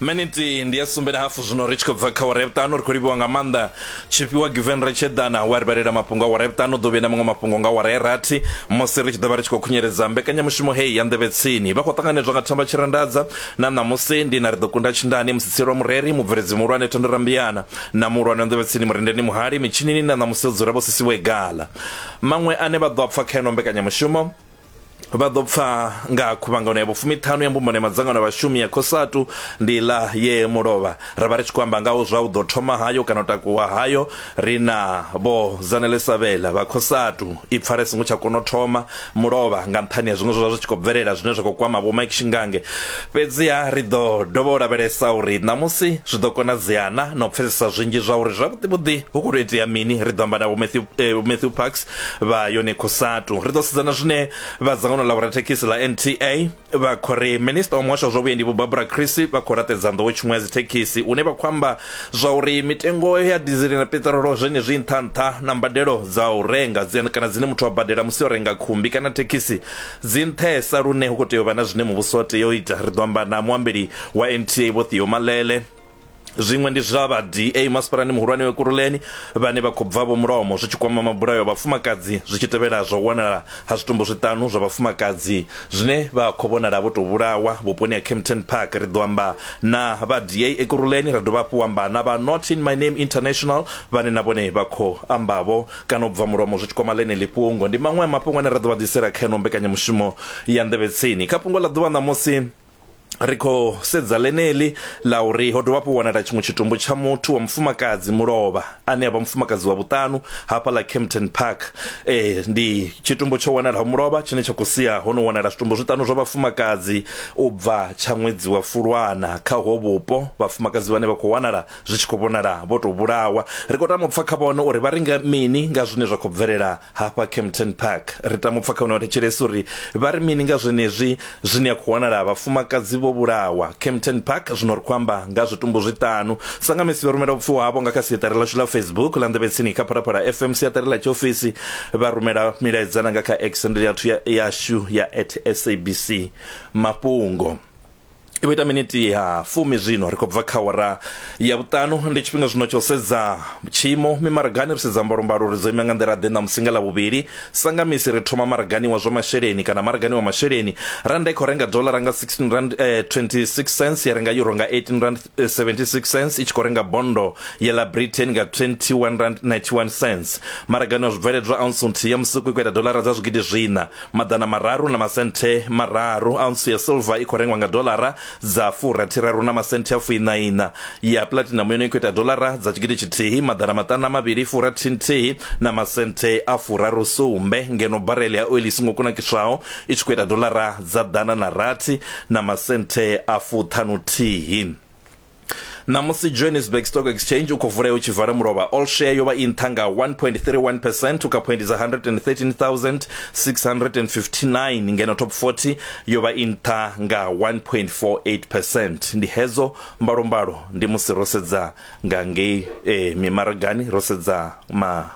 miniti ndi ya sumbe na hafu zwino ri tshi khou bva kha wara ya vhuṱanu ri khou livhiwa nga maanḓa tshifhiwa given ri tshi eḓana wa ri vhalela mafhungo a wara ya vhuṱanu ḓo vhuya na maṅwe mafhungo nga wara ya rathi musi ri tshi ḓo vha ri tshi khou khunyeledza mbekanyamushumo heyi ya nḓevhe tsini vha khou ṱanganedzwa nga thamba tshirandadza na ṋamusi ndi na ri ḓo kunda tshindani musitselo wa mureri mubveledzi muhulwane thendo rambiyana na muhulwane wa nḓevhe tsini murendeni muhali mitshinini na ṋamusi o dzula vho sisiwe gala maṅwe ane vha ḓo a pfa kha ino mbekanyamushumo vha ḓo pfa nga khuvhangano ya vhufumiṱhanu ya mbumbano ya madzangano a vhashumi ya khosatu ndi ḽa ye mulovha ra vha ri tshi khou amba ngaho zwa u ḓo thoma hayo kana u takuwa hayo ri na vho zanelesa vhela vha khosatu i pfala singo tsha kona u thoma mulovha nga nṱhani ya zwiṅwe zwa zwi tshi khou bvelela zwine zwa khou kwama vho Mike Shingange fhedziha ri ḓo dovha u lavhelesa uri ṋamusi zwi ḓo konadzeana na u pfesesa zwinzhi zwa uri zwavhuḓi vhuḓi hu khou tou itea mini ri ḓo amba na vho Matthew, eh, Matthew Parks vha yone cosatu ri ḓo sedzana zwine vha dzangano ḽa vhorathekhisi ḽa nta vha khou ri minista wa muhasho wa zwa vhuendi vho barbara chrissy vha khou raṱedza nḓowo tshiṅwe ya dzithekhisi une vha khou amba zwa uri mitengo ya dizili na peṱirolo zwenezwi nṱha nṱha na mbadelo dza u renga kana dzine muthu wa badela musi o renga khumbi kana thekhisi dzi nṱhesa lune hu khou tea u vha na zwine muvhuso wa tea u ita ri ḓo amba na muambeli wa nta vho theo malele Zwiṅwe ndi zwa vha DA masipalani muhulwane Ekurhuleni vhane vha khou bva vho mulomo zwi tshi kwama mabulayo a vhafumakadzi zwi tshi tevhela zwa u wanala ha zwitumbu zwiṱanu zwa vhafumakadzi zwine vha khou vhonala vho tou vhulawa vhuponi ha Kempton Park. Ri ḓo amba na vha DA Ekurhuleni ra dovha hafhu amba na vha Not In My Name International vhane na vhone vha khou ambavho kana u bva mulomo zwi tshi kwama ḽeneḽi fhungo. Ndi maṅwe a mafhungo ane ra ḓo vha ḓisela kha ino mbekanyamushumo ya Nḓevhetsini. Kha fhungo ḽa ḓuvha ṋamusi, ri khou sedza ḽeneḽi ḽa uri ho dovha hafhu wanala tshiṅwe tshitumbu tsha muthu wa mufumakadzi mulovha ane avha mufumakadzi wa vhuṱanu hafha ḽa Kempton Park eh ndi tshitumbu tsho wanalaho mulovha tshine tsha khou sia ho no wanala zwitumbu zwiṱanu zwa vhafumakadzi u bva tsha ṅwedzi wa Fulwana kha ho vhupo vhafumakadzi vhane vha khou wanala zwi tshi khou vhonala vho to vhulawa ri khou tama u pfha kha vhone uri vha ringa mini nga zwine zwa khou bvelela hafha Kempton Park. Ri tama u pfa kha hune wa thetshelesa uri vha ri mini nga zwenezwi zwine a khou wanala vhafumakadzi vho vhulawa Kempton Park. Zwino ri khou amba nga zwitumbu zwiṱanu. Sa nga misi vha rumela vhupfiwa havho nga kha siaṱari ḽashu ḽa Facebook ḽa Nḓevhe Tsini kha Phalaphala FM, siaṱari ḽa tshiofisi, vha rumela milaedza na nga kha X handle yashu ya at SABC Mafhungo. i vho ita miniti ya fumi zwino ri khou bva kha wara ya vhuṱanu ndi tshifhinga zwino tsha u sedza tshiimo mimaragani ri sedza mbalombalo uri dzo ima nga nḓila ḓe na musinga ḽa vhuvhili sangamisi ri thoma maragani wa zwa masheleni kana maragani wa masheleni randa i khou renga dolara nga 16 rand eh, 26 cents ya renga euro nga 18 rand 76 cents i tshi khou renga bondo ya ḽa britain nga 21 rand 91 cents maragani wa zwibveledzwa ounce nthihi ya musuku i khou ita dolara dza zwigidi zwina maḓana mararu na masenthe mararu ounce ya silver i khou rengwa nga dolara dza furathiraru na masenthe a fuiṋaiṋa ya platinum yone i khou ita dolara dza tshigidi tshithihi maḓana maṱanu na mavhili furathi nthihi na masenthe a furaru sumbe ngeno barele ya oili i songo kunakiswaho i tshi khou ita dolara dza ḓana na rathi na masenthe a fuṱhanuthihi. Ṋamusi Johannesburg Stock Exchange u khou vulea u tshi vala mulovha, all share yo vha i nṱha nga 1.31 percent u kha phoindi dza 113,659 ngeno top 40 yo vha i nṱha nga 1.48 percent. Ndi hedzo mbalombalo ndi musi ro sedza nga ngei eh, mimaragani ro sedza ma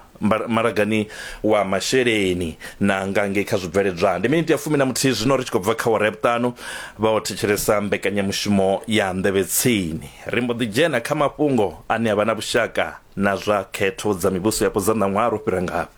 maragani wa masheleni na nga ngei kha zwibveledzwa ndi miniti ya fumi na muthihi zwino ri tshi khou bva kha wara ya vhuṱanu vha o thetshelesa mbekanyamushumo ya nḓevhe tsini ri mbo ḓi dzhena kha mafhungo ane a vha na vhushaka na zwa khetho dza mivhuso yapo dza ṋaṅwaha ro fhira ngafhi